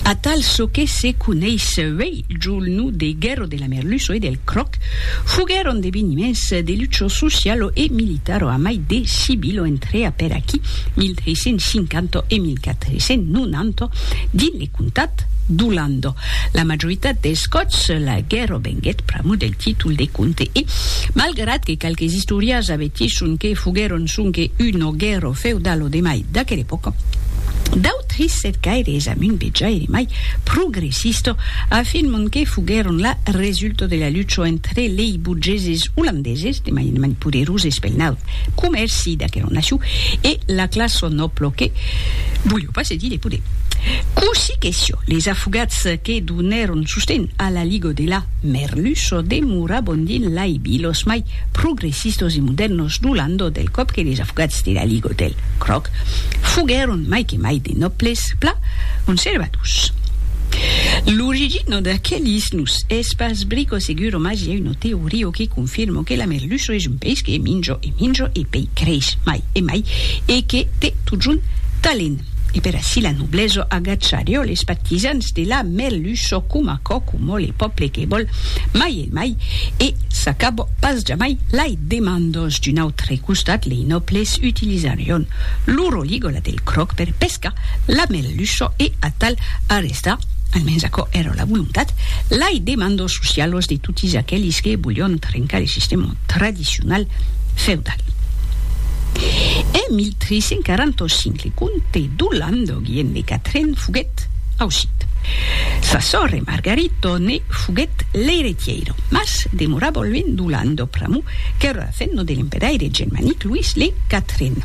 Atal çò que se coneis uèi jo l no de Guerro de la Merluço e del Croc foguèron deveniments de lucho socialo e militaro amai de civilo entrea per aquí 1350 e 1490 dins le comtat d'Olando. La majoritat dels còps la guerro venguèt pr'amor del títol de comte e, malgrat que qualques istorians avertisson que foguèron sonque uno guerro feudalo de mai d'aquela epòca, Trissèt gaire es amunt de jaire mai progressista a fin mond que foguèron la resulta de la lucha entre lei burgeses olandeses de mainement poderoses pel naut comèrci d'aquera nacion e la classa nòbla que voliá pas cedir de poder. Cossí que siá, les afogats que donèron sosten a la liga de la Merluça demoravan dins lai vilas mai progressistos e modèrnos du landau del còp que les avocats de la Ligue Hôtel Cròc foguèron mai que mai de nòbles pla conservadors. L'origina d'aquelis nos es pas brico seguro mas i a una teoria que confirma que la merluça es un peish que minja e minja e pei creix mai e mai e que te totjorn talent. E per ací la noblesa agacharió les partisans de la merluça coma cò coma le pòble que vòl mai e Mai, e s'acab pas jamai, lai demandos. D'un autre costat, lei nòbles utilizarion lo roligola del cròc per pescar la merluça e atal arrestar, almens aquò èra la volontat, lai demandos socialos de totis aquelis que volion trencar le sistèma tradicional feudal. En 1345, le comte d'Olandoguien de Catren foguèt ausit. Sa sòrre Margarito ne. foguèt l'eiretièira, mas demorava luènh d'u Landau pr'amor qu'èra afenno de l'empedaire germanic Luís le Quatren.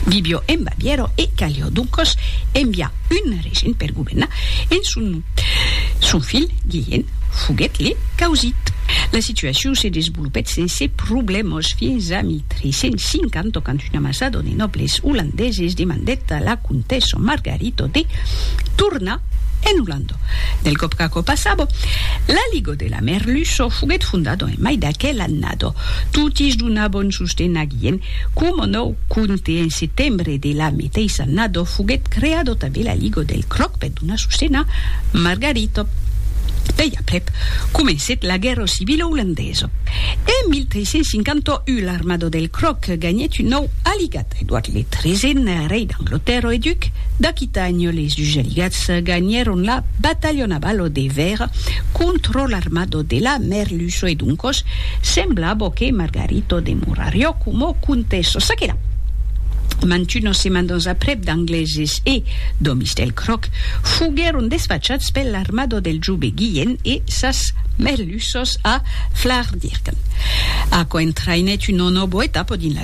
Vivió en Bavièra e calió doncòs enviar un regent per governar en son nom. Son filh Guilhèn foguèt le causit. La situacion se desvolopèt sense problèmas fins a 1350 quand una masada de nòbles olandeses demandèt a la comtessa Margarita de tornar En Ulando, del còp qu'aquò passava, la Ligo de la Merluço foguèt fondada en mai d'aquel annada. Totis donabon sosten aguien, coma nòu conte en setembre de la meteissa annada foguèt creada tanben la Ligo del Cròc per donar sosten a Margarita. Pèi aprèp, comencèt la guèrra civila ulandesa. En 1351 l'armada del Cròc ganhèt un nòu aligat. Edward le Treisen, rei d'Anglotèrra e duc d'Aquitània, les Ugelligats ganhèron la batalha navalo de Vèira contra l'armada de la Merluço e doncas semblava que Margarito demorariá coma comtessa. Ça que la, mantunas semandas aprèp d'Angleses e d'òmis del Cròc foguèron desfachats per l'armada del jove Guilhèn e sas Merluças a Flaardirken, aquò entraïnèt una nòva etapa dins la.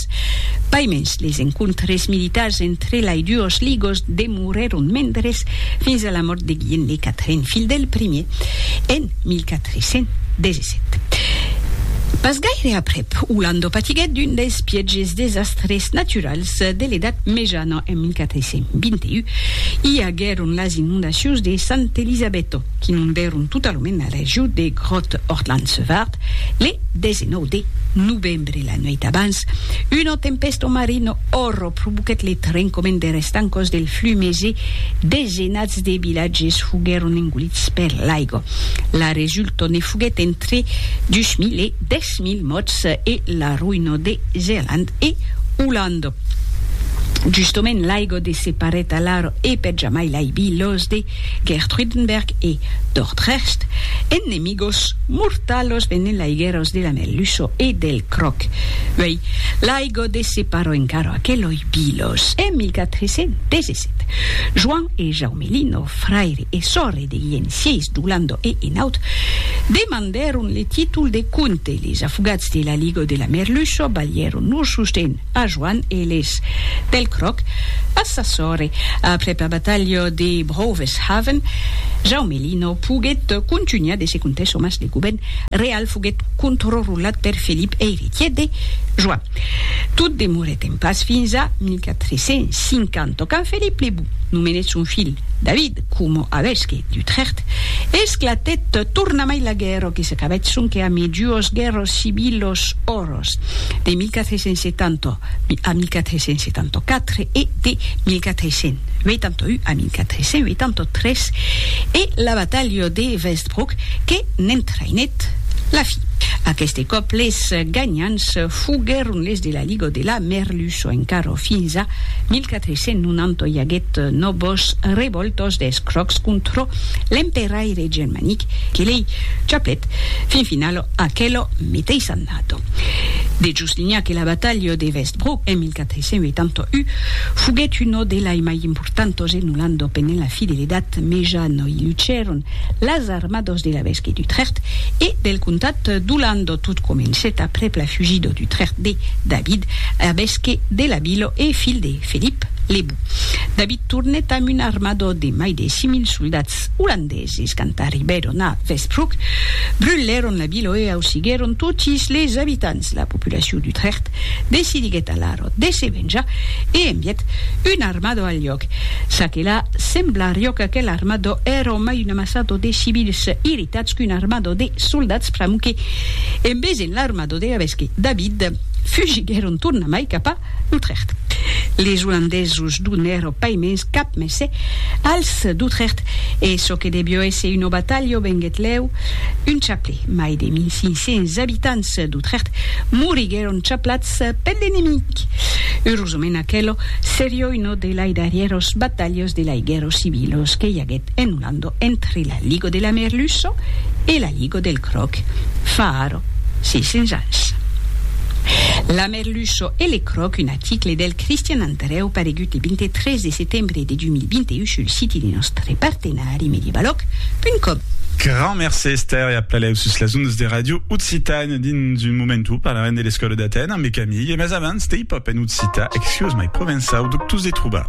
Amics. Pas mens, les encontres militars entre lai duos ligos demorèron mendres fins a la mòrt de Guilhem le Quatren, filh del primier, en 1417. Pas gaire aprèp, Olando patiguèt d'un dels pièges desastres naturals de l'Edat Mejana en 1421. I aguèron las inondacions de Sant Elisabetto, qu'inondèron totalament la region de Grotte-Ortland-Sevart le 19 de novembre. Dre la nuèit d'abans, una tempèsta marina òrra provoquèt le trencament der estancòs del Flumés e desenats de vilatges foguèron engolits per l'aiga. La resulta ne foguèt entre 2.000 e 10.000 mòrts e la roïna de Zealand e Olanda. Justament l'aiga de se parèt alara e per jamai l'aibi los de Geertruidenberg e Dordrecht en 1900. Gos mortalos venen laigueros de la Melluso e del Croc. Uei, l'aigo de se paro encaro aqueloi bilos. En 1417, Joan e Jaume Lino, fraire e sòrre de Guilhem Sièis d'Olando e Enaut, demandèron le títol de comte. Les afogats de l'aigo de la Merluso balhèron lor sosten. a Joan Eles. Pel cròc, pas sa sòrre. Aprèp la batalha de Broveshaven, Jaume Lino poguèt contunhar de se contar çò mas de govèrn real foguèt controrulat per Felip eiretièr de Joan. Tot demorèt en pas fins a 1450 quand Felip le Bon nomenèt son filh David coma avesque d'Utrècht. Esclatèt tornamai la guèrra que s'acabèt sonque amé duos guèrras civilas. Carlos, de 1470 a 1474 e de 1481 a 1483, e la batalha de Westbrook que n'entraïnèt la fin. Aqueste còp les ganhants foguèron les de la Liga de la Merluço, encara fins a 1490 i aguèt nòvas revòltas d'escròcs contra l'emperaire germanic que lei chaplèt fin finala Aquelo meteis annada, de Juslinha que la batalha de Westbrook en 1481 foguèt una de lai mai importantas en Olanda pendent la Fidelidat, me ja no i lucèron las armadas de l'evesque d'Utrecht e del comtat d'Olanda. Tot comencèt aprèp la fugida d'Utrecht de David, evesque de la vila e filh de Felip le Bou. David tornèt amb una armada de mai de 6.000 soldats olandesi. Sis quand arribèron a Westbrook, brulèron la vila e ausiguèron totis les abitants. La populacion d'Utrecht decidiguèt alara de se venjar e envièt un armado al lhòc. Ça que la, semblarió qu'aquel armado èra mai un amassado de civils irritats qu'un armado de soldats pr'amor que, en vesent l'armado de la vèsque David, fugiguèron tornamai cap a D'Utrecht. Les olandesos donèro pas mens cap messè als d'Utrecht e çò que debió èsser una batalha venguèt lèu un chaplè. Mai de 1500 abitants d'Utrecht moriguèron chaplats per l'enemic. Eurosament aquelo serió una de lai darrièros batalhos de lai guèrros civilos que i aguèt en Olanda entre la Ligo de la Merluça e la Ligo del Cròc fa ara 600 ans. La Er Lucho e le Croc, un article del Cristian Antareu paregut le 23 de setembre de 2021 sul siti de nòstre partenari Medibalòc.com. Grand mercé Esther e aplalèu sus las ondas de Radio Occitània. Dins un momentu parlarem de l'escòla d'Atèn ambe Camille, mas abans, de hip-hop en occitan, excuós mai provençau, dubtós de trobar.